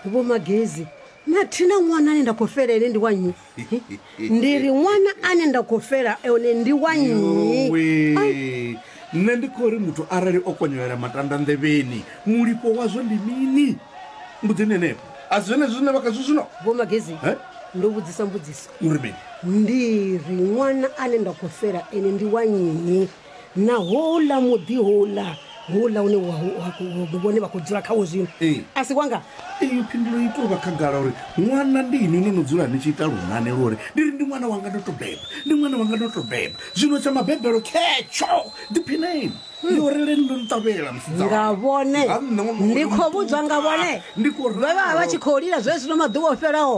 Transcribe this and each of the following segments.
vho magezi mathina ṅwana ane nda khou fela ene ndi wa nnyi ndi ri ṅwana ane nda khou fela one ndi wa nnyi Yowe. nṋe ndi khou ri muthu arali o konyolela matanda nḓevheni mulipo wazwo ndi mini mbudzini henefho a si zwenezwi zwine vha khazwo zwino vho magezi Eh? ndo vhudzisa mbudziso uri mini ndi ri ṅwana ane nda khou fela ene ndi wa nnyi na houḽa muḓi houḽa houḽa une wa- wa- wa- vhone vha khou dzula khawo zwino Ee. a si wanga iyo phindulo i tou vha khagala uri ṅwana ndi inwi no no dzula ni tshi ita lunane lu uri ndi ri ndi ṅwana wanga ndo to beba ndi ṅwana wanga ndo to beba zwino tsha mabebelo khetsho ḓiphineni yo releni ndo ni ṱavhela musidzana. nga vhone Nga nṋe ṅwana wanga ndi ndo khou mu vhudzwa nga ṱuwa. vhone Ndi khou vha vha vha ralo. tshi khou lila zwezwino maḓuvha o fhelaho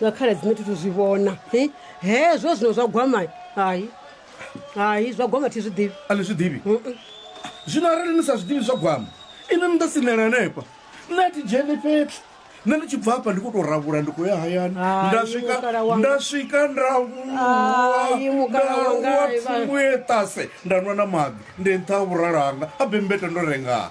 nga khala dzine thi thu zwi vhona hi hezwo zwino zwa gwama hai hai zwa gwama thi zwi ḓivhi a ni zwi ḓivhi zwino arali ni sa zwi ḓivhi zwa gwama ini ni ḓo sinela hanefha nṋe a thi dzheni fhethu nṋe ndi tshi bva hafha ndi khou tou ravhula ndi khou ya hayani Hai, nda swika mukala wanga. nda swika nda Hai, vuwa mukala wanga, nda vuwa Ivana. thungu ye ṱase nda nwa na maḓi ndi nṱha ha vhuralo hanga a bembeta ndo rengaa